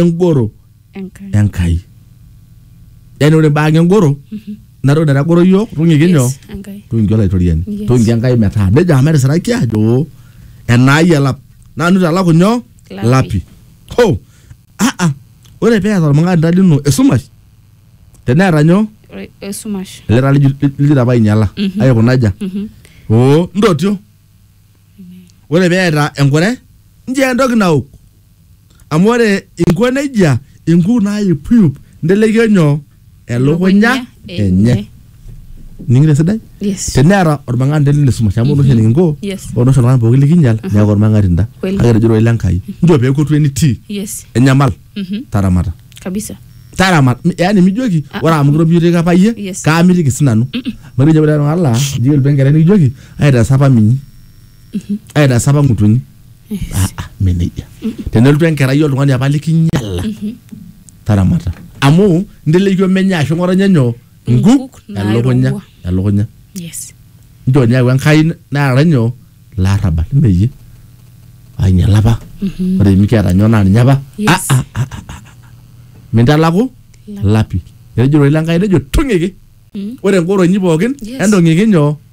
engoro Enkai. enkai yani ore mbaa engoro natoki naitagoro yiok tung'iki nyoo Yes, Enkai. tung'iki olaitoriani Yes. tung'iki enkai metaa nejo amu etisiraki ajo enaai elap nanu talaku nyoo Lapi. lapi ho aa ore peeta olmang'anda lino esumash teneeta nyoo Ore- Esumash. ele taa lijo lijo apa ainyala aikuna aja Mhm. oo ntotio ore peeta enkure njia entoki naok amu ore inko nejia inkuk naayupuyup ntelekio nyoo elukunya enye ning'ito esidai Yes. teneeta ormang'ati nelo ine sumash amu ore oshi enikinko Yes. ore oshi oltung'ani pooki likinyal neeku ormang'atinda Kweli. kake etejo doi lenkai njoo peeku etu enitii Yes. enyamal Mhm. taramata kabisa taramat yani mijoki Ah. ore amu kirobiyote apa iyie Yes. kaamitiki sinanu matejo ore ala ijo elpengere nikijoki aitaasa apa minyi aitaasa apa ng'utunyi Ah, ah, mme nejia tenelotu enkerai oltung'ani apa likinyala taramata amu nteleikiomenya ashu ng'otonye nyoo nkuk elukunya naairowua. elukunya yes nchoo ninye ayau enkai naara nyoo larrabal meyie ainyala apa Mhm. ore mikiata nyoo naa ninye apa Yes. Ah, ah, ah, ah, ah. mintalaku Lap. lapi etejo ororei lenkai nejo tung'iki Mm. ore ngoroinyi pookin Yes. entong'iki nyoo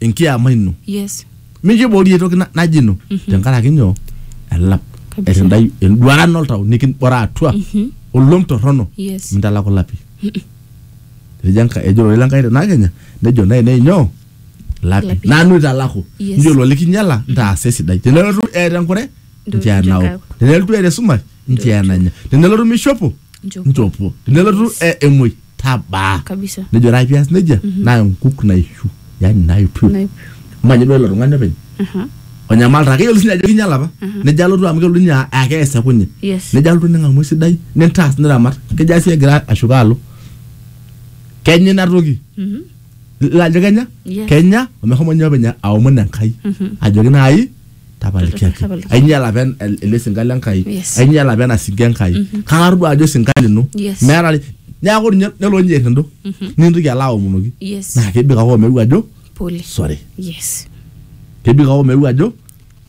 enkiama ino yes mikiborie toki na- naji ino tenkaraki nyoo elap Kabisa. etindai enduaran oltau nikinbora atua olom torrono Yes. mintalaku lapi ejo Enkai- ejo ore lenkai tenakenya nejo nainei nyoo lapi Lapi. nanu italaku Yes. njo ilo likinyala ntaasa esidai tenelotu eeta enkure Ndotu nchoo enao enkae. tenelotu eeta esumash nchoo enanya tenelotu mishopo Nchopo. nchopo tenelotu e- emuoi tabaa kabisa nejo ore ake pias nejia naa enkuk naishu yani naipiu Naip. amu ajo duo ilo tung'ani openy Aha. onyamalta keyiolo sinye ajo kinyiala apa nejo alotu amu kelotu ninye aa kees ekunye Yes. nejo alotu ning'amu esidai nintaas niramat kejo asi egira ashuko alo kenya ina toki Mhm. ilo ajo kenya Yes. kenya omeshomo ninye openy aomon enkai ajoki naai tapalikiaki Tapalikiaki. ainyala apa en- el- ele sinka le nkai Yes. ainyala apa ena sinka enkai kang'ar duo ajo sinka lino Yes. meeta ni- neeku ninye nelo ninye errindo nintoki alo aomonoki yes naa kebik ake omeu ajo pole sorry yes kebik ake omeu ajo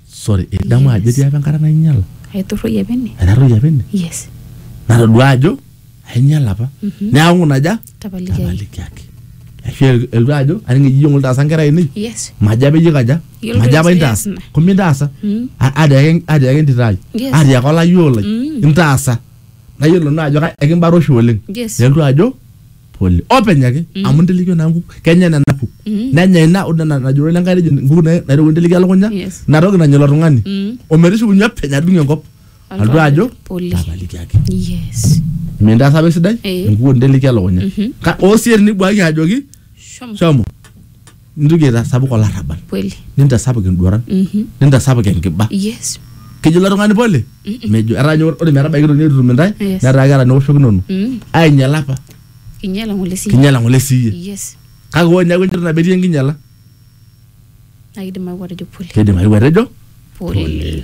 sorry idamu ajo Yes. etii apa enkata nainyala aiturroi apa ene aitaroyie apa ene yes natodua ajo ainyala apa neaku naja Tapalikiaki. tapalikiaki ashu el- elotu ajo aning eji ijo ng'ole taasa nkera ainei Yes. majo apa iyie kaja Yiolo majo apa intaas ina. kumbe intaasa Mm. A- atiaki atiaki entito ai Yes. atiaki olayioo lai Mm. intaasa nayiolo naa ajo ka- ekimbara oshi oleng Yes. elotu ajo pole openy ake amu intelekio naa nkuk kenya nena kuk Mm. nenya ina ore nena najoro lenkai nejo nkuk na- naitoki intelekio elukunya Yes. inatoki nanya ilo tung'ani Mm. ometishukunye openy adung enkop Alotu ajo? pole tapaliki ake yes mintaas apa esidai Eh. enkuo nteleki elukunya Mhm. Ka- oo sii tenibuaki ajoki shomo shomo nintoki aitasapuk olarrabal kweli nintasapuk enduaran Mhm. nintasapuk enkiba yes kejo ilo tung'ani pole mejo etaa ninye ore metabaiki toki netutum intae Yes. netaa keeta niwoshokinono Mm. ainyala apa kinyala ngole si kinyala ng'ole siiyie yes kake ore niaku enchoto nabo etii enkinyala na kidim aku atejo pole keidim ayieu atejo pole